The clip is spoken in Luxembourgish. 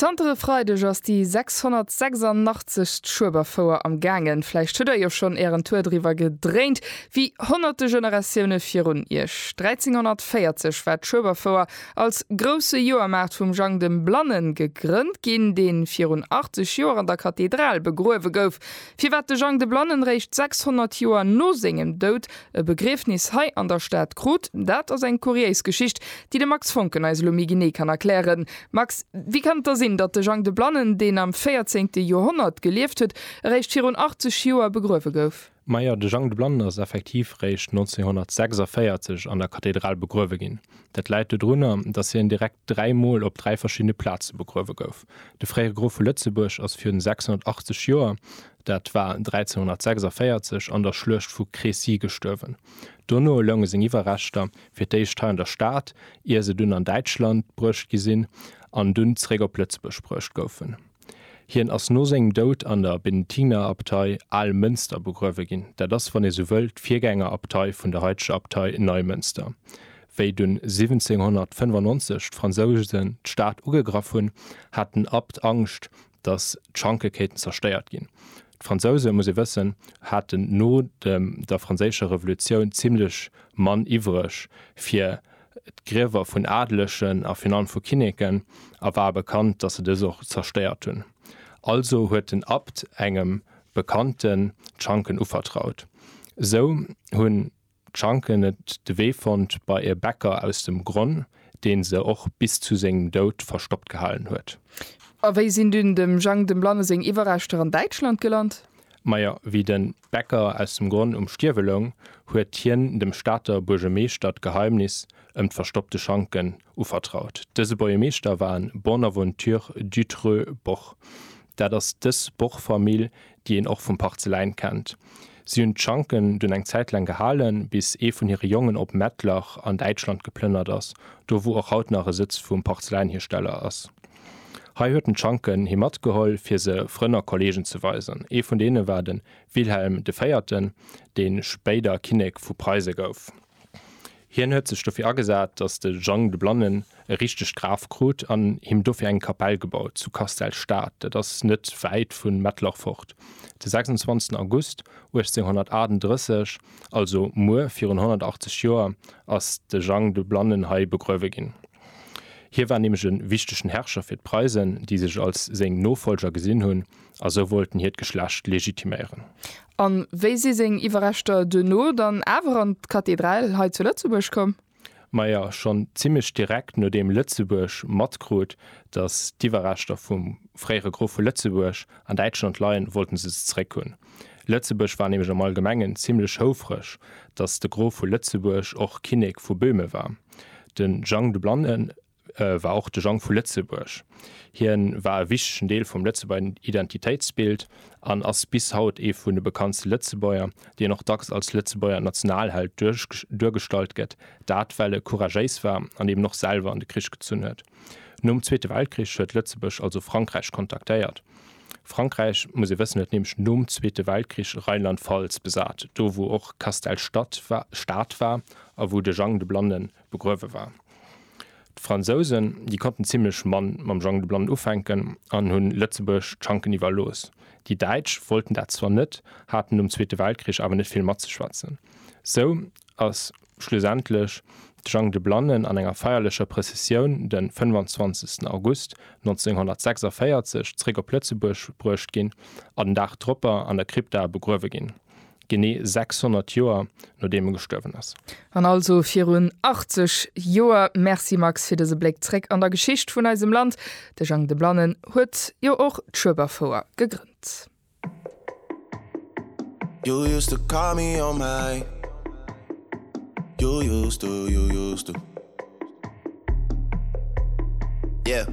Zanter e Freideg ass déi 686. Schueberfouer am gaangen. Vläicht hutt der jo schonn ären Tour driwwer gedréint, wéi honnerte Generatioune virun iech. 1340 war d'Schueberfouer als grousse Joermaart vum Jang dem Blannen gegrënnt ginn, dee virun 80 Joer an der Kathedral begruewe gouf. Firwat de Jang de Blannen réischt 600 Joer no sengem Doud e Begriefnis hei an der Stad krut, dat ass eng kuriéis Geschicht, déi de Max Foncken eis elo méi genee kann erklären. Max, wéi kann et da sinn, datt de Jang de Blannen, deen am véierzéngte Joerhonnert gelieft huet, eréischt virun 80 Joer begruewe gouf? Majo, de Jang de Blannen ass effektiv eréischt 1946 an der Kathedral begruewe ginn. Dat läit dodrunner, datt hien direkt dräi Mol op dräi verschiddene Plaze begruewe gouf. De fréiere Grof vu Lëtzebuerg ass virun 680 Joer, dat war 1346, an der Schluecht vu Crécy gestuerwen. Dono lounge seng Iwwerreschter fir d'éischt hei an der Stad, ier se dunn an Däitschland bruecht gi sinn an dunn zeréck op Lëtzebuerg bruecht goufen. Hien ass no sengem Doud an der Benediktinerabtei Almënster begruewe ginn, dat ass, wann ee sou wëll, d'Virgängerabtei vun der haiteger Abtei Neimënster. Wéi dunn 1795 d'Fransousen d'Stad ugegraff hunn, hat den Abt Angscht, datt d'Schanke kéinten zerstéiert ginn. D'Fransousen, muss ee wëssen, haten no der franséischer Revolutioun zimlech Mann iwwreg fir d'Griewer vun Adelegen a virun allem vu Kinneken a war bekannt, datt se dës och zerstéiert hunn. Also huet den Abt engem Bekannten d'Schanken uvertraut. Esou hunn D'Schanken et de Wee fonnt bei e Bäcker aus dem Gronn, deen se och bis zu sengem Doud verstoppt gehalen huet. A wéi sinn dunn dem Jang dem Blanne seng Iwwerreschter an Däitschland gelant? Majo, wéi de Bäcker aus dem Gronn um Stierwe loung, huet hien dem Stater Buergemeeschter d'Geheimnis ëm d'verstoppte Schanken Uvertraut. Dëse Bourgemeeschter war en Bonaventure Dutreu Boch. Dat ass dës Boch-Famill, déi een och vum Parzeläin kennt. Si hunn d'Schanken dunn eng Zäit laang gehalen, bis ee vun hire Jongen op Mettlach an Däitschland geplënnert ass, do wou och haut nach e Sëtz vum Parzeläinhiersteller ass. Hei huet en d'Schanken hi matgeholl, fir se Frënn a Kolleegen ze weisen. Ee vun deene war de Wilhelm de Véierten, dee spéider Kinnek vu Preise gouf. Hien huet sech dofir agesat, datt de Jang de Blannen e richtegt Graf krut an him dofir eng Kapell gebaut zu Castell-Stad, dat ass net wäit vu Mettlach fort. De 26 August 1838, also muer virun 180 Joer, ass de Jang de Blannen hei begruewe ginn. Hie war nämlech e wichtegen Herrscher fir d'Preisen, déi sech als seng Nofollger gesinn hunn, a sou wollten hiert Geschlecht legitiméieren. A wéi si seng Iwwerreschter duerno dann awer an d'Kathedral hei zu Lëtzebuerg komm? Maja, schonn zimmlech direkt nodeem Lëtzebuerg matkrut, datt d'Iwwerreschter vum fréiere Grof vu Lëtzebuerg an Däitschland leien, wollte se se zeréck hunn. Lëtzebuerg war nämlech am Allgemengen zimmlech houfreg, datt de Grof vu Lëtzebuerg och Kinnek vu Böhmen war. De Jang de Blannen war och de Jang vu Lëtzebuerg. Hien war e wichtegen Deel vum Lëtzebuerger Identitéitsbild an ass bis haut ee vun de bekanntste Lëtzebuerger, deen och dacks als Lëtzebuerger Nationalheld duergestallt gëtt, dat well e couragéis war an eben och selwer an de Krich gezunn huet. Nom Zweete Weltkrich huet Lëtzebuerg also Frankräich kontaktéiert. Frankräich, muss ee wëssen, huet nämlech nom Zweete Weltkrich Rheinland-Pfalz besat, do wou och Castell Stad war a wou de Jang de Blannen begruewe war. D'Fransousen, déi konnten zimlech mann mam Jang de Blannen ufänken an hunn Lëtzebuerg d'Schanken iwwerlooss. Déi Däitsch wollten dat zwar net, haten nom Zweete Weltkrich awer net vill matzeschwätzen. Sou ass schlussendlech de Jang de Blannen an enger feierlecher Prëssessioun de 25 August 1946 zréck op Lëtzebuerg bruecht ginn a den Dag dropper an der Krypta begruewe ginn. Genee 600 Joer nodeem e gestuerwen ass. An also virun 80 Joer. Merci Max fir dëse Bléck zréck an der Geschicht vun eisem Land. De Jang de Blannen huet jo och d'Schueberfouer gegrënnt. You used to call me on my You used to, you used to Yeah